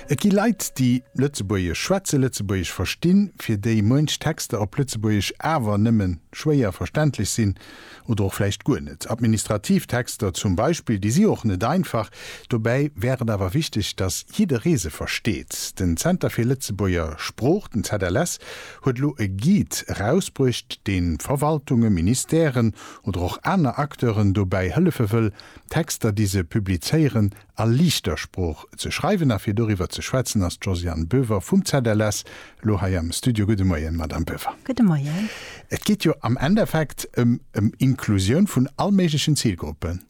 Et gi Leit, déi Lëtzebuergesch schwätzen, Lëtzebuergesch verstinn, fir déi muench Texter op Lëtzebuergesch awer nëmme schwéier verständlech sinn oder och vläicht guer net. Administrativ Texter zum Beispill, déi si och net einfach. Dobäi wär et awer wichteg, datt jidderee se versteet. Den Zenter fir Lëtzebuerger Sprooch, den ZLS, huet elo e Guide erausbruecht, dee Verwaltungen, Ministèren oder och aner Acteuren dobäi hëllefe wëll, D'Texter, déi se publizéieren, a liichter Sprooch ze schreiwen. A fir doriwwer ze schwätzen ass d'Josiane Boever vum ZLS elo hei am Studio. Gudde Moien, Madamm Boever. Gudde Moien. Et geet jo am Endeffekt ëm Inklusioun vun allméiglechen Zilgruppen.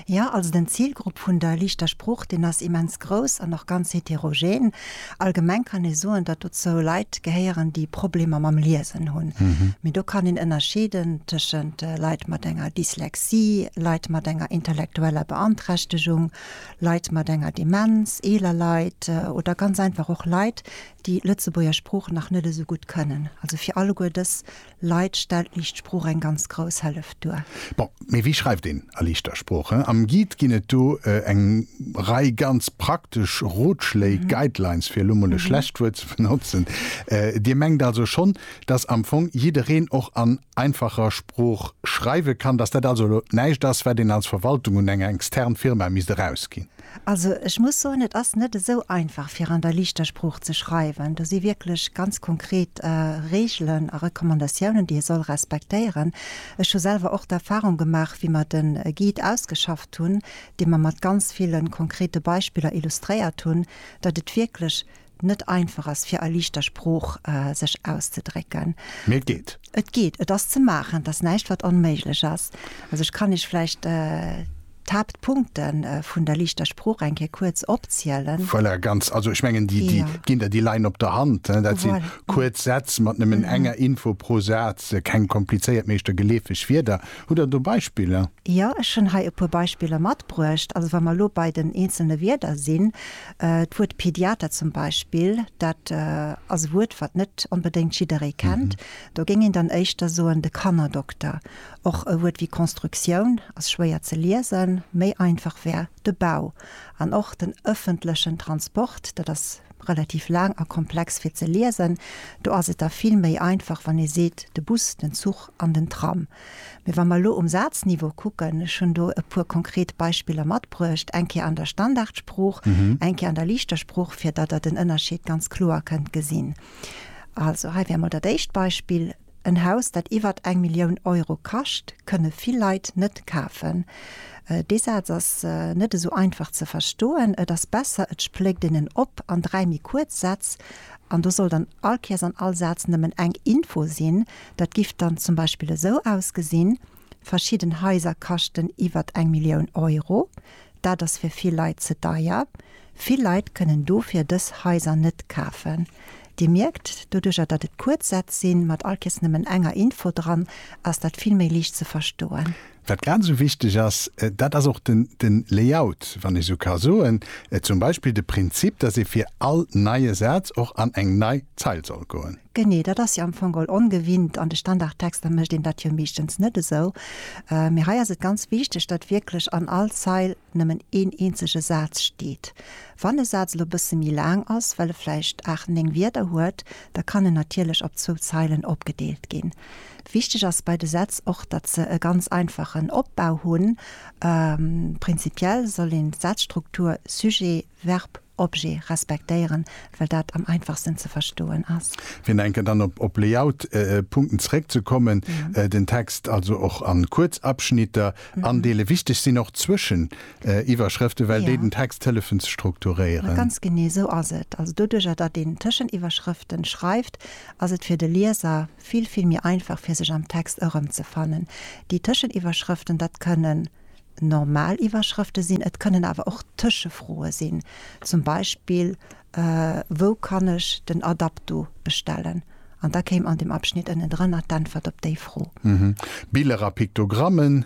Jo, also den Zilgrupp vun der liichter Sprooch, deen ass immens grouss an och ganz heterogen. Allgemeng kann ee soen, datt dozou Leit gehéieren, déi Problemer mam Liesen hunn. Mee do kann een ënnerscheeden tëschent Leit mat enger Dyslexie, Leit mat enger intellektueller Beanträchtegung, Leit mat enger Demenz, eeler Leit oder ganz einfach och Leit, déi Lëtzebuerger Sprooch nach net esou gutt kënnen. Also fir alleguer dës Leit stellt liicht Sprooch eng ganz grouss Hëllef duer. Bon, mee wéi schreift een a liichter Sprooch? Am Guide ginn et do eng Rei ganz praktesch Rotschléi, Guidelines, fir elo mol e schlecht Wuert ze benotzen. Dir mengt also schonn, dass am Fong jiddereen och an einfacher Sprooch schreiwe kann, dass dat also elo näischt ass, wat een als Verwaltung un eng extern Firma misst erausginn? Also ech muss soen, et ass net esou einfach fir an der liichter Sprooch ze schreiwen. Do si wierklech ganz konkret Reegelen a Recommandatiounen, déi ee soll respektéieren. Ech hu selwer och d'Erfahrung gemaach, wéi mer de Guide ausgeschafft hunn, dee mer mat ganz ville konkrete Beispiller illustréiert hunn, datt et wierklech net einfach ass fir a liichter Sprooch sech auszedrécken. Mee et geet. Et geet, et ass ze maachen, et ass näischt wat onméiglech ass. Also ech kann Iech vläicht d'Haaptpunkte vun der liichter Sprooch eng Kéier kuerz opzielen. Voilà, ganz, also ech mengen déi ginn der, déi leien op der Hand, dat si kuerz Sätz mat nëmmen enger Info pro Saz, keng komplizéiert, meeschter geleefeg Wierder. Hutt Der do Beispiller? Jo, ech hunn hei e puer Beispiller matbruecht. Also wa mer elo bei den eenzelne Wierder sinn, D'Wuert Pediater zum Beispill, dat ass e Wuert, wat net onbedéngt jidderee kennt. Do géing een dann éischter soen de Kannerdokter. Och e Wuert wéi Konstruktioun ass schwéier ze liesen. Méi einfach wär de Bau. An och den ëffentlechen Transport, dat ass relativ laang a komplex fir ze liesen. Do ass et da vill méi einfach, wann ee seet de Bus, den Zuch an den Tram. Mee wa mer elo um Sazniveau kucken, ech hunn do e puer konkret Beispiller matbruecht, eng Kéier an der Standardsprooch, eng Kéier an der liichter Sprooch, fir datt Der den Ënnerscheed ganz kloer kënnt gesinn. Also hei wär emol dat éischt Beispill, En Haus, dat iwwert eng Millioun Euro kascht, kënne vill Leit net kafen. Dee Saz ass net esou einfach ze verstoen. Et ass besser, et spléckt een en op an dräi méi kuerz Sätz, an do soll dann all Käers an all Saz nëmmen eng Info sinn, Dat giff dann zum Beispill esou ausgesinn, Verschidden Haiser kaschten iwwert eng Millioun Euro. Dat ass fir vill Leit ze deier. Vill Leit kënnen dofir dës Haiser net kafen. Dir mierkt, doduercher datt et kuerz Sätz sinn, mat all Kees nëmmen enger Info dran, ass dat vill méi liicht ze verstoen. Wat grad esou wichteg ass, dat ass och den Layout, wann ech esou ka soen, zum Beispill de Prinzip, dass ee fir all neie Saz och an eng nei Zeil soll goen. Genee, dat ass jo am Fong all ongewinnt. An de Standardtexter mécht een dat jo meeschtens net esou, mee hei ass et ganz wichteg, datt wierklech an all Zeil nëmmen een eenzege Saz steet. Wann e Saz elo e bësse méi laang ass, well e vläicht aacht, néng Wierder huet, da kann en natierlech op zwou Zeilen opgedeelt ginn. Wichteg ass bei de Sätz och, datt se e ganz einfachen Opbau hunn. Prinzipiell soll een d'Sazstruktur Sujet, Verb, Objet respektéieren, well dat am einfachsten ze verstoen ass. Fir nach eng Kéier dann op Layout-Punkten zeréckzekommen, den Text also och a kuerz Abschnitter andeelen. Wichteg sinn och d'Zwëscheniwwerschrëften, well déi den Text hëllefen ze strukturéieren. Ganz genee esou ass et. Also doduerjer, datt een Tëscheniwwerschrëften schreift, ass et fir de Lieser vill, vill méi einfach, fir sech am Text erëmzefannen. Déi Tëscheniwwerschrëften, dat kënnen normal Iwwerschrëfte sinn, et kënnen awer och Tëschefroe sinn, zum Beispill, Wou kann ech den Adapto bestellen? An da kéim an dem Abschnitt ënnendrënner d'Äntwert op déi Fro. Biller a Piktogramme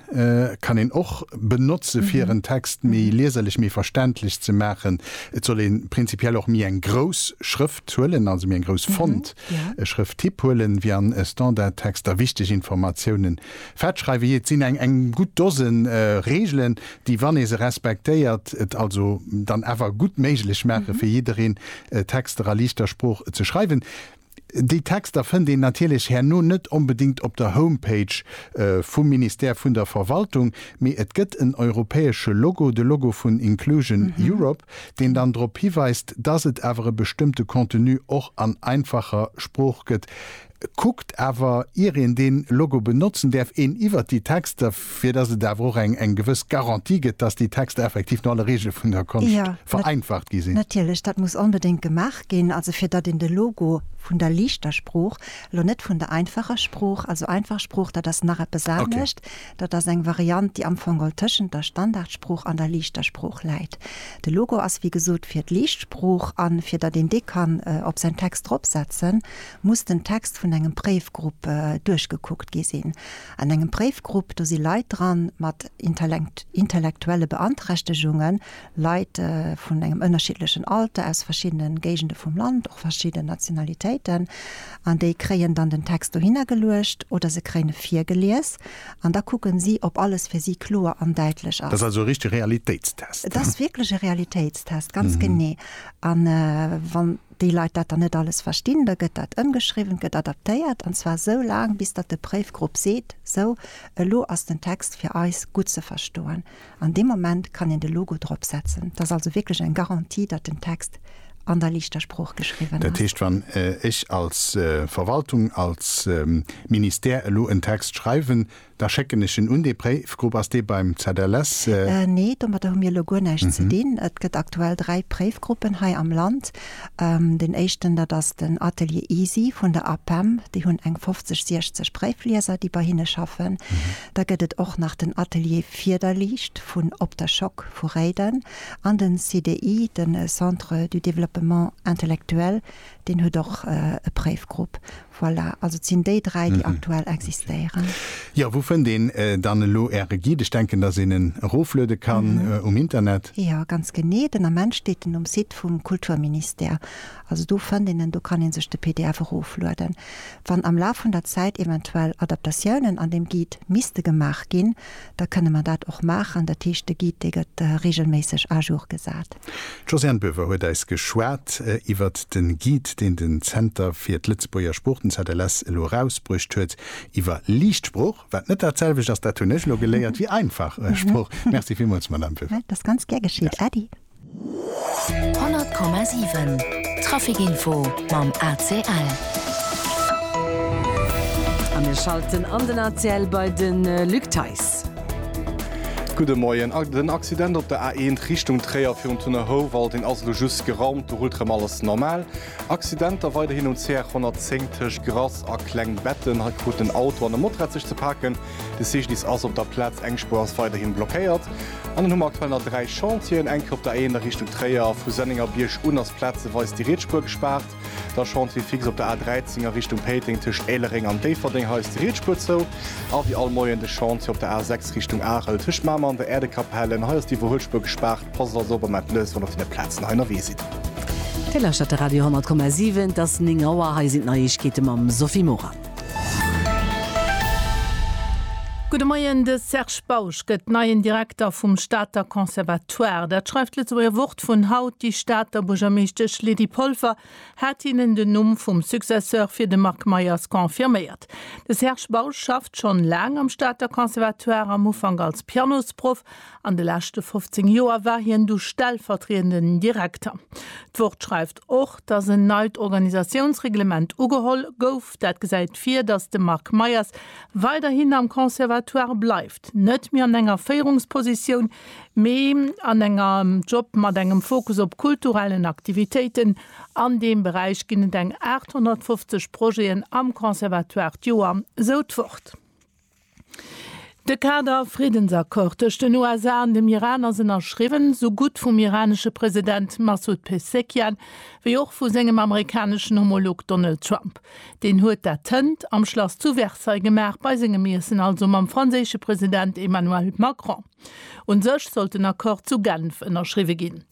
kann een och benotze fir en Text méi lieserlech, méi verständlech ze maachen. Et soll ee prinzipiell och méi eng grouss Schrëft huelen, also méi eng grouss Font, e Schrëfttyp huelen, wéi an Standardtexter. Wichteg Informatiounen Fett schreiwen, jee, et sinn eng eng gutt Dosen Reegelen, déi, wann ee se respektéiert, et also dann awer gutt méiglech maachen, fir jiddereen Texter a liichter Sprooch ze schreiwen. Déi Texter fënnt een natierlech herno net onbedéngt op der Homepage vum Ministère vun der Verwaltung, mee et gëtt en europäesche Logo, de Logo vun Inclusion Europe, deen dann drop hiweist, dass et awer e bestëmmte Contenu och an einfacher Sprooch gëtt. Kuckt awer, ier een deen Logo benotzen däerf, een iwwert déi Texter, fir dass et awer och eng gewëss Garantie gëtt, dass déi Texter effektiv no alle Reegele vun der Konscht vereinfacht gi sinn. Natierlech, dat muss onbedéngt gemaach ginn, also fir datt een de Logo vun der liichter Sprooch, elo net vun der einfacher Sprooch, also einfach Sprooch, dat ass nach eppes anescht, dat ass eng Variant, déi amfongol tëschent der Standardsprooch an der liichter Sprooch läit. De Logo ass wéi gesot fir d'liicht Sprooch an fir datt een dee kann op säin Text dropsetzen, muss den Text vun engem Préifgrupp duerchgekuckt gi sinn. An engem Préifgrupp, do si Leit dran mat intellektuelle Beanträchtegungen, Leit vun engem ënnerschiddlechen Alter, aus verschiddene Géigende vum Land, och verschidden Nationalitéiten. An déi kréien dann den Text dohinner geluecht oder se kréien e virgelies an da kucken si, ob alles fir si kloer an däitlech ass. Dat ass also e richtege Realitéitstest? Et ass wierklech e Realitéitstest, ganz genee. An wann. déi Leit dat dann net alles verstinn, da gëtt dat ëmgeschriwwen, et gëtt adaptéiert, an zwar esou laang, bis datt de Préifgrupp seet, Esou, elo ass den Text fir eis gutt ze verstoen. An deem Moment kann een de Logo dropsetzen. Dat ass also wierklech eng Garantie, datt den Text an der liichter Sprooch geschriwwen ass. Dat heescht, wann ech als Verwaltung, als Ministère elo en Text schreiwen, Da schécken ech en un dee Préifgrupp. Ass dee beim ZLS? Nee, domadder hu mir elo guer näischt ze dinn. Et gëtt aktuell dräi Préifgruppen hei am Land. Deen éischten, dat ass den Atelier Easy vun der APEM. Déi hunn eng 50, 60 Préiflieser, déi bei hinne schaffen. Da gëtt et och nach den Atelier Fiederliicht vun Op der Schock vu Réiden. An den CDI, den Centre du développement intellectuel, deen huet och e Préifgrupp. Voilà, also et sinn déi dräi, déi aktuell existéieren. Jo, wou fënnt een dann elo Äre Guide? Ech denken, datt een en erofluede kann um Internet. Jo, ganz genee. Den Ament steet en um Site vum Kulturministère. Also do fënnt een en, do kann ee sech de pdf eroflueden. Wann am Laf vun der Zäit eventuell Adaptatiounen an deem Guide misste gemaach ginn, da kënne mer dat och maachen. Dat heescht, de Guide, dee gëtt reegelméisseg à jour gesat. D'Josiane Boever huet eis geschwat iwwert de Guide, deen den Zenter fir d'Lëtzebuerger Sprooch, den ZLS, elo erausbruecht huet iwwer liicht Sprooch, wat net dat selwecht ass, dat hunn ech elo geléiert, wéi einfach Sprooch. Merci villmools, Madamm Boever. Dat ass ganz gär geschitt, Äddi. 100,7 Traficinfo mam ACL. A mir schalten an den ACL bei de Luc Theis. Gudde Moien. Den Accident op der A1 Richtung Tréier virun Thun-Houwald-ing ass elo just geraumt. Do rullt erëm alles normal. Accidenter weiderhin um CR 110 tëscht Grass a Klengbetten. Hei kruten en Auto an e Motorrad sech ze paken. De CGDIS ass op der Plaz, eng Spuer ass weiderhi blockéiert. An dann hu mer aktuell nach dräi Chantieren, eng Kéier op der A1 a Richtung Tréier. Vu Sennengerbierg un ass plazeweis déi riets Spuer gespaart. Da Chantier fixe op der A13 a Richtung Péiteng, tëscht Éilereng an Déifferdeng. Hei ass déi riets Spuer zou. A wéi all Moien de Chantier op der A6 Richtung Arel, tëscht Mamer an der Äerdekapell. En hei ass déi Iwwerhuelspuer gespaart. Passt also op a mellt lech, wann der op deene Plazen hei ënnerwee sidd. Dir lauschtert de Radio 100,7. Et ass 9 Auer. Hei sinn d'Neiegkeete mam Sophie Morang. Gudde Moien, De Serge Bausch gëtt neien Direkter vum Stater Conservatoire. Dat schreift d'Lëtzebuerger Wort vun haut. Déi Stater Buergermeeschtesch Lydie Polfer hat hinnen den Numm vum Successeur fir de Marc Meyers confirméiert. De Serge Bausch schafft schonn laang am Stater Conservatoire, am Ufank als Pianosproff. An de leschte 15 Joer war hien du stellvertriedenden Direkter. D'Wort schreift. Och dass en neit Organisatiounsreglement ugeholl gouf, dat gesäit vir, dass de Marc Meyers weiderhin am Conservatoire bleift, net méi an enger Féierungspositioun, mee an engem Job mat engem Fokus op kulturellen Aktivitéiten. An deem Beräich ginn et eng 850 Projeten am Conservatoire d'Joer, sou d'Wort. De Kader Friddensaccord tëscht den USA an dem Iran ass ënnerschriwwen, sou gutt vum iranesche President Massoud Pezeshkian wéi och vu sengem amerikaneschen Homolog Donald Trump. Deen huet dat hënt am Schlass zu Versailles gemaach, bei sengem Iessen also mam franséische President Emmanuel Macron. Un sech sollt den Accord zu Genf ënnerschriwwe ginn.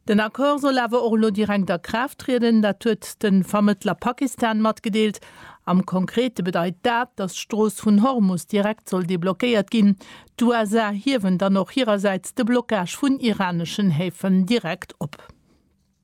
Den Accord soll awer och elo direkt a Kraaft trieden, dat huet de Vermëttler Pakistan matgedeelt. Am Konkrete bedeit dat, datt d'Strooss vun Hormus direkt soll deblockéiert ginn. D'USA hiewen dann och hirersäits de Blockage vun iraneschen Häfen direkt op.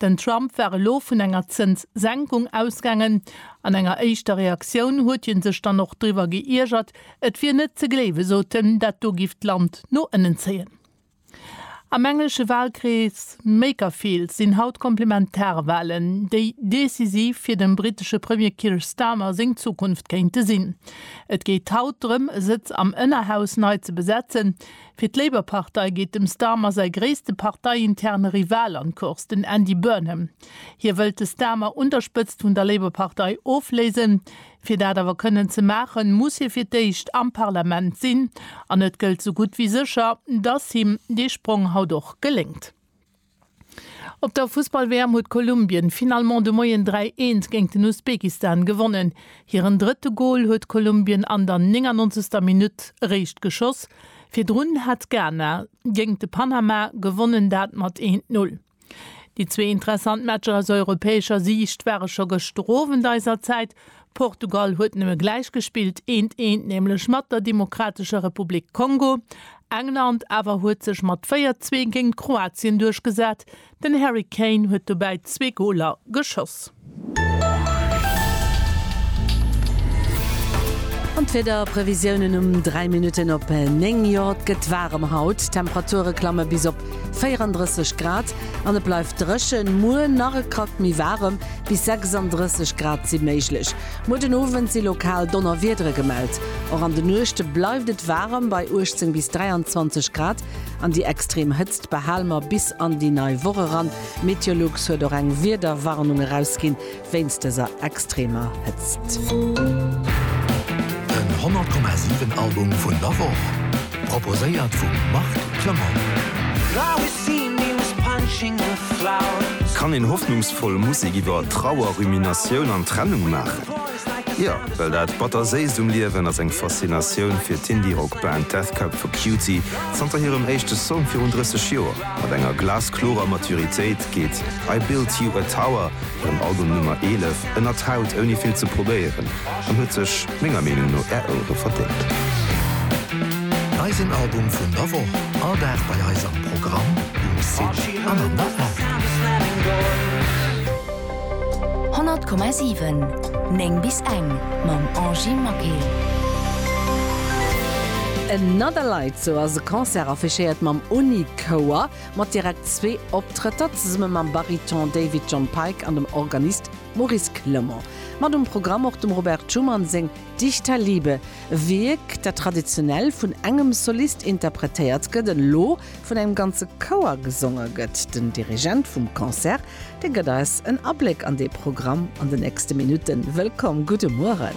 Den Trump war elo vun enger Zënssenkung ausgaangen. An enger éischter Reaktioun huet hie sech dann och driwwer geiergert, et wier net ze gléiwe sot en, dat do giff d'Land no ënnen zéien. Am englesche Walkrees Makerfield sinn haut Komplementarwalen, déi decisiv fir dem brittesche Premier Keir Starmer seng Zukunft kéinte sinn. Et geet haut drëm e Sëtz am Ënnerhaus nei ze besetzen, Fir d'Labour-Partei geet dem Starmer säi gréisste parteiinterne Rival an d'Course, den Andy Burnham. Hie wëllt de Starmer un der Spëtzt vun der Labour-Partei ofléisen. Fir dat awer kënnen ze maachen, muss hie fir d'éischt am Parlament sinn. An et gëllt sou gutt wéi sécher, datt him dee Sprong haut och geléngt. Op der Fussball-WM huet Kolumbien finalement de Moien 3, 1 géint den Usbekistan gewonnen. Hiren drëtte Gol huet Kolumbien an der 99. Minutt eréischt geschoss. Virdrun hat Ghana géint de Panama gewonnen, dat mat 1, 0. Déi zwee interessant Matcher aus europäescher Siicht ware scho gëschter Owend eiser Zäit. Portugal huet nëmme gläich gespillt, eent, eent, nämlech mat der Demokratescher Republik Kongo. England awer huet sech mat 4, 2 géint Kroatien duerchgesat. Den Harry Kane huet dobäi zwee Goler geschoss. An d'Wiederprevisiounen um 3 Minutten op 9, Jo, et gëtt waarem haut, d'Temperature klamme bis op. 34 Grad an et bleift dréchen. Muer nach e Krack méi waarem, bis 36 Grad si méiglech. Muer den Owend si lokal Donnerwiedere gemellt. Och an de Nuechte bleift et waarem, bei 18 bis 23 Grad. An déi extrem Hëtzt behale mer bis an déi nei Woch eran. Meteolux huet och eng Wiederwarnung erausginn. wéinst dëser extremer Hëtzt. Den 100,7 Album vun der Woch, proposéiert vum Marc Clement. Kann een hoffnungsvoll Musek iwwer Trauer, Ruminatioun an Trennung maachen? Jo, well dat Batterséist um Liewen ass eng Faszinatioun fir d'Indie-Rock-Band Death Cab for Cutie. Zanter hirem éischte Song virun 30 Joer mat enger glasklorer Maturitéit geet I Built You a Tower Den Album Nummer 11 ënnert Haut ouni vill ze probéieren an huet sech menger Meenung no är Ouere verdéngt. Eisen Album vun der Woch, all Dag bei eis am Programm, um Site an an der App. 100,7 9 bis eng mam Angy Maquet. Another Light, sou ass e Concert affichéiert mam Uni-Chouer. mat direkt zwee Optrëtter zesumme mam Bariton David John Pike an dem Organist Maurice Clement. Mat um Programm och dem Robert Schumann seng Dich der Liebe, e Wierk, dat traditionell vun engem Solist interpretéiert gëtt, elo vun engem ganze Chouer gesonge gëtt. Den Dirigent vum Concert, dee gëtt eis en Abléck an dee Programm an de nächste Minutten. Wëllkomm, gudde Mueren.